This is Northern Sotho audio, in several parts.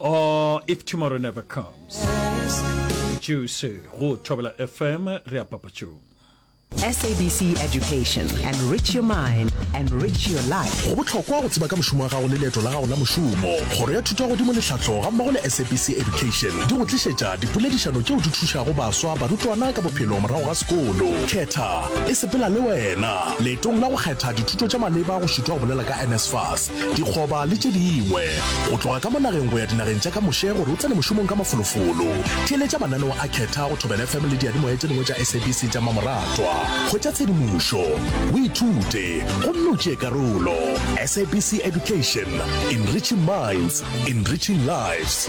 Oh, if tomorrow never comes. Juicy, go Thobela FM, re a papatšong. SABC Education. Enrich your mind, enrich your life. go bohlokwa go tseba ka mošomo wa gago le leeto la gago la mošomo kgoro ya thuto ya godimo lehlahlo ga mmogo le sabc education di go tlišetša dipoledišano tšeo di thušago baswa barutwana ka bophelo morago ga sekolo khetha e sepela le wena leetong la go kgetha dithuto tša maleba go šitwa go bolela ka nsfas dikgoba le tše dingwe, go tloga ka mo nageng go ya dinageng tša ka moše gore o tsene mošomong ka mafolofolo. Theeletša mananeo a Khetha go Thobela FM le diyadimoya tše dingwe tša SABC tša mmamoratwa. Hwetša tshedimošo, o ithute gomme o tšee karolo. SABC Education, Enriching Minds, Enriching Lives.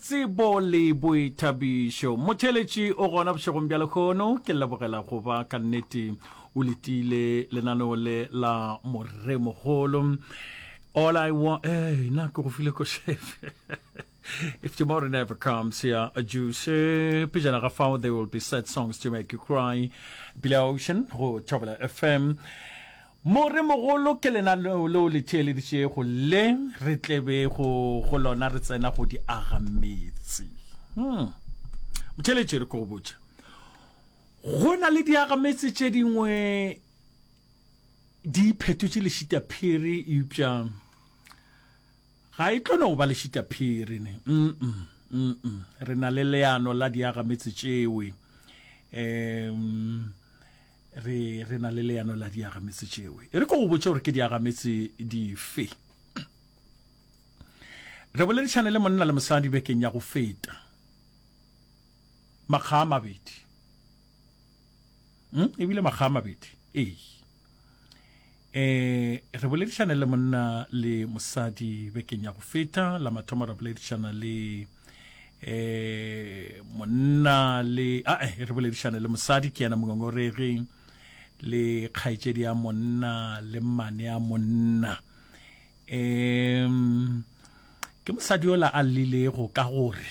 Tsebo le boithabišo. Motheeletši o gona bošegong bja lekgono. Ke lebogela go ba ka nnete o letile lenaneo le la Moremogolo. All I want, eh, na ke go file ko shefe. If tomorrow never comes, yeah, a juice. Eh, pejana ga fao, there will be sad songs to make you cry. Billy Ocean, go Thobela FM. More mogolo ke lena leo le theeleditšego le re tlebego go lona re tsena go di aga meetse. Hmm. Motheeletše re ko go botše. Go na le diaga meetse tše dingwe di iphetotše lešita phiri eupša ga e tlo no ba lešita phiri ne. Mm -mm. Mm -mm. Re na le leano la diaga meetse tšewe. Um, re re na le leano la diagametse tšeo e re ko go botša gore ke diagametse dife re boledišane le monna le mosadi bekeng ya go feta makga a mabedi hmm? ebile makga a mabedi ee E, re boledišane le monna le mosadi bekeng ya go feta la mathomo ra boledišana le e, monna le a e, re boledišane le mosadi ke yena mongongoregi le kgaetšedi ya monna le mmane ya monna um ke mosadi yola a llilego ka gore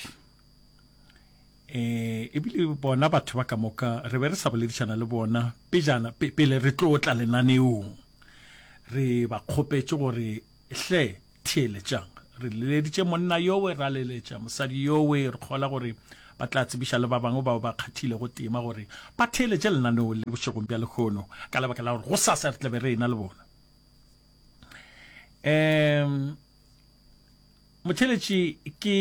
E, ebile bona batho ba ka moka re be re sa boledišana le bona pejana pe, pele re tlo tla lenaneong. Re ba kgopetše gore, Hle, theeletšang. Re leleditše monna yowe, ra leletša mosadi yowe, re kgola gore ba tla tsebiša le ba bangwe bao ba kgathilego tema gore ba theeletše lenaneo le bošegong bja lehono, ka lebaka la gore gosasa re tla be re ena le bona. E, Motheletši ke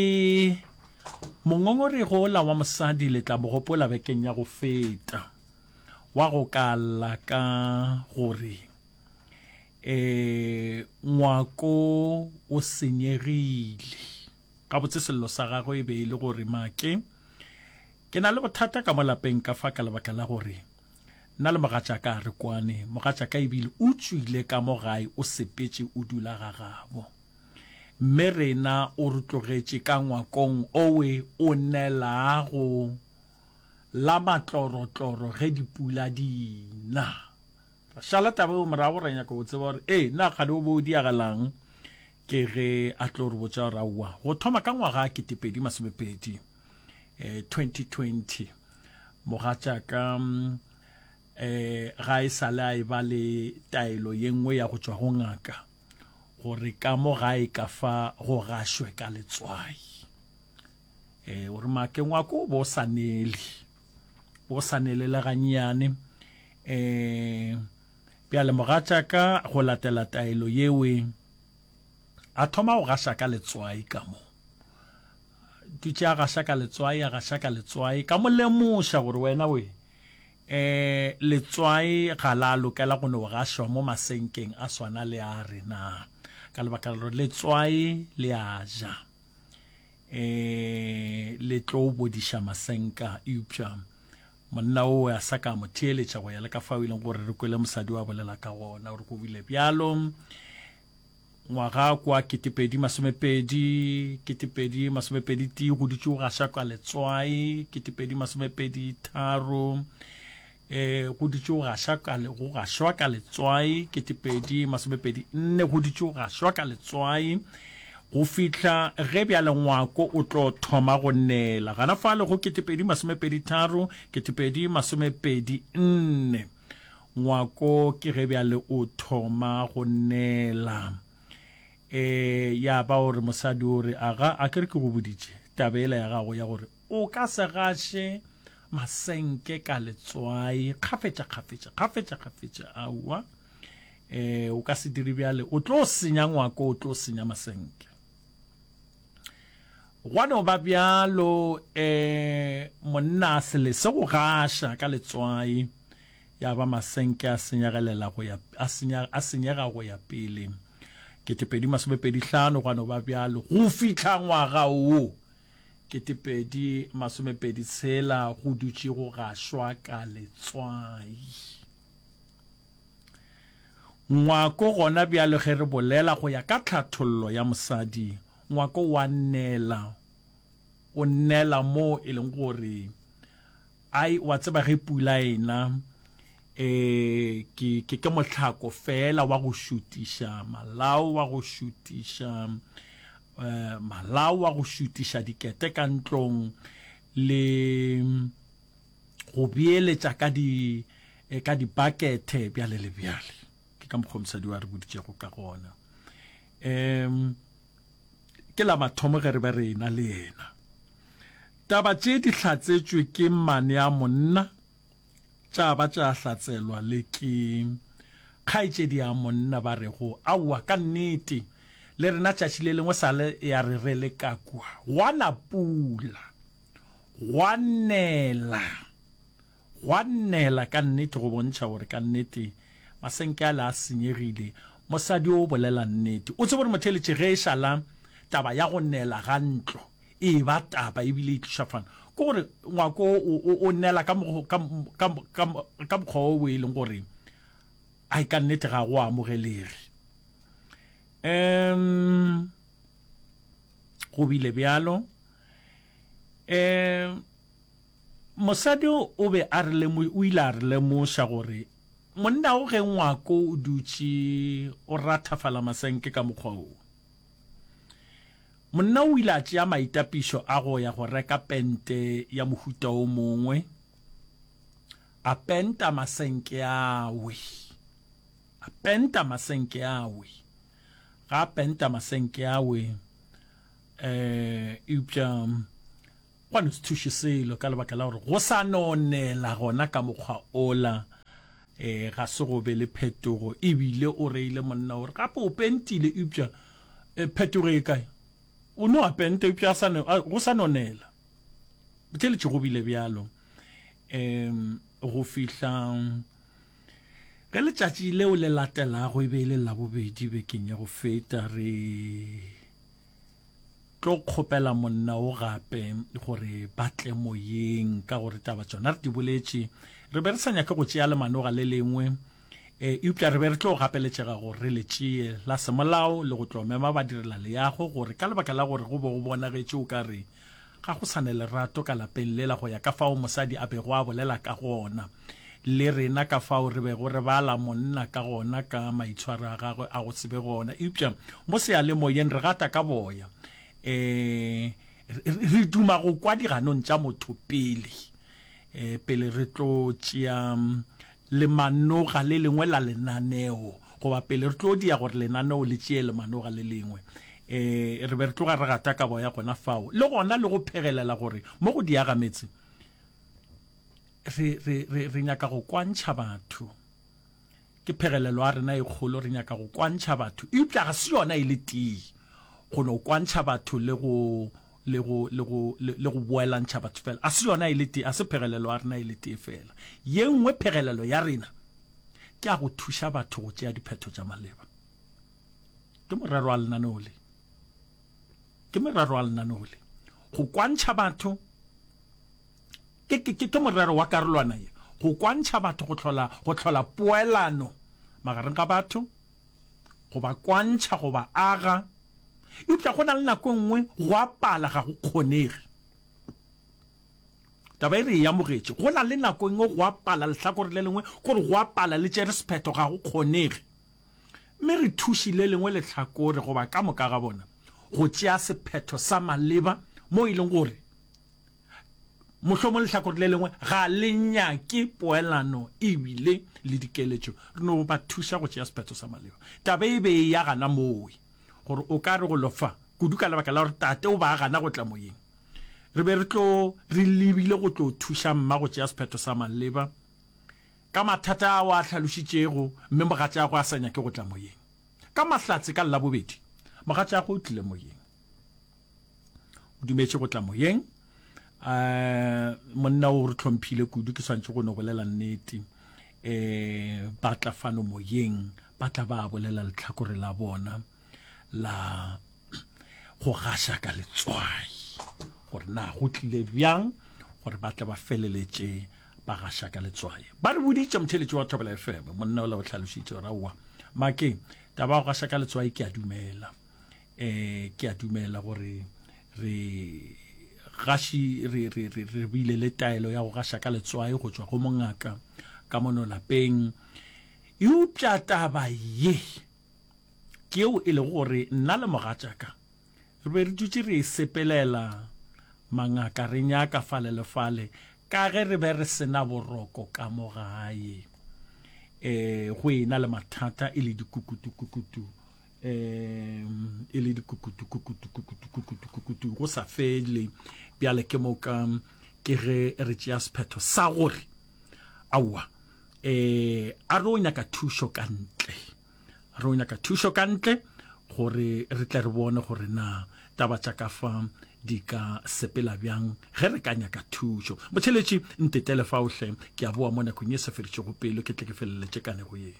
mongongoregi ola wa mosadi le tla mo gopola bekeng ya go feta wa go ka lla ka gore e ngwako o senyegile gabotse sello sa gagwe e be e le gore make ke na le bothata ka mo lapeng ka fa ka lebaka la gore nna le mogatšaka a re kwane mogatšaka ebile o tswile ka mo gae o sepetše o dula ga gabo Mme rena o re tlogetše ka ngwakong owe o nelago la matlorotloro ge dipula di na. Ra šala taba eo morago, ra nyaka go tseba gore, ee, na kgale o be o diagelang? Ke ge a tlo re botša gore, aowa, go thoma ka ngwaga ketepedi masomepedi, eh, 2020, mogatšaka eh, ga e sale a e ba le taelo ye nngwe ya go tšwa go ngaka. gore ka mo gae ka fa go gašwe ka letswai e o re makeng wa ko bo sa nele bo sa nele le gannyane um bjale mogatšaka go latela taelo yewe a thoma go gaša ka letswai ka mo dutše a gaša ka letswai a gaša ka letswai ka mo lemoša gore wena we Ee, letswai ga la lokela go no gašwa mo masenkeng a swana le a rena, ka lebaka la gore letswai le a ja, ee, le tlo bodiša masenka. Eupša monna o a sa ka mo theeletša go ya le ka fao e leng gore re kwele mosadi wa bolela ka gona, o re ko bile bjalo. Ngwaga kwa ketepedi masomepedi, ketepedi masomepedi tee go dutše go gaša ka letswai, ketepedi masomepedi tharo, e go dutše go gaša ka go gašwa ka letswai, ketepedi masomepedi nne go dutše go gašwa ka letswai go fihla ge bjale ngwako o tlo thoma go nela gana fa le go ketepedi masomepedi tharo ketepedi masomepedi nne Ngwako ke ge bjale o thoma go nela. E, ya ba o re mosadi o re, Aga, a ke re ke go boditše taba ela ya gago ya gore o ka se gaše masenke ka letswai kgafetša kgafetša kgafetša kgafetša. Aowa, e, o ka se dire bjale, o tlo senya ngwako, o tlo senya masenke. Gwa no ba bjalo, e, monna a se lese go gaša ka letswai, ya ba masenke a senyegelela go ya, a senya, a senyega go ya pele. Ketepedi masomepedi hlano, gwa no ba bjalo, go fihla ngwaga wo ketepedi masomepedi tshela, go dutše go gašwa ka letswai. Ngwako gona bjale ge re bolela go ya ka tlhathollo ya mosadi, ngwako wa nnela, o nnela moo e leng gore ai wa tseba ge pula ena e ke ke ke motlhako fela wa go šutiša malao wa go šutiša eh, malao wa go šutiša dikete ka ntlong le go beeletša ka di eh, ka dibakethe bjale le bjale ke ka mokgwa mosadi wa re boditšego ka gona um ke la mathomo ge re be re ena le yena taba tše di hlatsetšwe ke mane a monna tša ba tša hlatselwa le ke kgaetšedi ya monna ba rego aowa ka nnete le rena tšatši le lengwe sa le ya re re le ka kua gwana pula Gwa nnela, gwa nnela ka nnete go bontšha gore ka nnete masenke ale a senyegile. Mosadi o bolela nnete. O tsebe gore motheeletši, ge e šala taba ya go nela ga ntlo e eba taba e bile e tliša fano, ke gore ngwako o, o nela ka, ka, ka, ka, ka mokgwa o e leng gore ai ka nnete ga go amogelege. Um, go bile bjalo. um mosadi o be a re lemo o ile a re lemoša gore monna o ge ngwako o dutše o rathafala masenke ka mokgwa wo monna o ile a tšea maitapišo a go ya go reka pente ya mohuta o mongwe a penta masenke awe a penta masenke awe ga a penta masenke awe um eupša gwa no se thuše selo ka lebaka la gore go sa nonela gona ka mokgwa ola um ga se go be le phetogo ebile o reile monna gore gape o pentile eupša um phetogo e kae o no a penta eupša go sa nonela botheletše go bile bjalo um go fihla Ge letšatši leo le latelago e be e le Labobedi bekeng ya go feta, re tlo kgopela monna o gape gore ba tle moyeng ka gore taba tsona re di boletše re be re sa nyake go tšea lemanoga le lengwe e eupša re be re tlo gapeletšega gore re le tšee la semolao le go tlo mema badirela leyago gore ka lebaka la gore go be go bonagetše o ka re Ga go sa na lerato ka lapeng lela go ya ka fao mosadi a bego a bolela ka gona, le rena ka fao re bego re bala monna ka gona ka maitshwaro a gagwe a go se be gona. Eupša mo seyalemoyeng re gata ka boya. Ee, re duma go kwa diganong tša motho pele, pele re tlo tšea lemanoga le lengwe la lenaneo, goba pele re tlo dia gore lenaneo le tšee lemanoga le lengwe, e, re be re tloga re gata kabo ya gona fao, le gona le go phegelela gore mo go diaga metse re, re, re, re nyaka go kwantšha batho. Ke phegelelo ya rena e kgolo, re nyaka go kwantšha batho, eupša ga se yona e le tee go no kwantšha batho le go le go, le go, le, le go boelantšha batho fela. A se yona e le tee, a se phegelelo ya rena e le tee fela. Ye nngwe phegelelo ya rena ke ya go thuša batho go tšea diphetho tša maleba. Ke morero wa lenaneo le. Ke morero wa lenaneo le. Go kwantšha batho ke, ke, ke, ke morero wa karolwana ye. Go kwantšha batho go hlola, go hlola poelano magareng ga batho. go ba kwantšha, go ba aga, eupša go na le nako e nngwe go a pala, ga go kgonege. Taba e re e amogetše, go na le nako e nngwe go a pala, lehlakore le lengwe gore go a pala le tšere sephetho, ga go kgonege. Mme re thuši le lengwe lehlakore goba ka moka ga bona go tšea sephetho sa maleba mo e leng gore Mohlomong lehlakore le lengwe ga le nyake poelano ebile le dikeletšo re no ba thuša go tšea sephetho sa maleba. Taba e be e ya gana mowe gore o ka re go lofa kudu ka lebaka la gore tate o ba a gana go tla moyeng. Re be re tlo re lebile go tlo thuša mma go tšea sephetho sa maleba ka mathata ao a hlalošitšego mme mogatšagwe a sa nyake go tla moyeng. Ka Mahlatse ka Labobedi, mogatšagwe o tlile moyeng. o dumetše go tla moyeng um monna o re tlhomphile kudu ke swantšhe go no bolela nnete um ba tla fano moyeng ba tla ba bolela letlhakore la bona la go gaša ka letswai gore na go tlile bjang gore ba tla ba feleletše ba gaša ka letswai ba re boditše motheletši wa thobela fm monna o la o tlhalošitše gore aowa make taba go gaša ka letswai ke a dumela eh ke a dumela gore re gaši re re re re bile le taelo ya go gaša ka letswae go tswa go mongaka ka mono lapeng eupša taba ye ke yeo e lego gore nna le mogatšaka re be re dutše re e sepelela mangaka re nyaka fale le fale ka ge re be re sena boroko ka mo gae um go ena le mathata e le dikukutukukutu um e le dikukutu kukutu kukutu kukutu kukutu go sa fele bjale ke moka ke ge re tšea sephetho sa gore aowa um a re o nyaka thušo ka ntle a re o nyaka thušo ka ntle gore re tle re bone gore na taba tša ka fa di ka sepela bjang ge re ka nyaka thušo botheletši ntetele faohle ke a boa mo nakong e sa feditšego pelo ke tle ke feleletse kanego yeo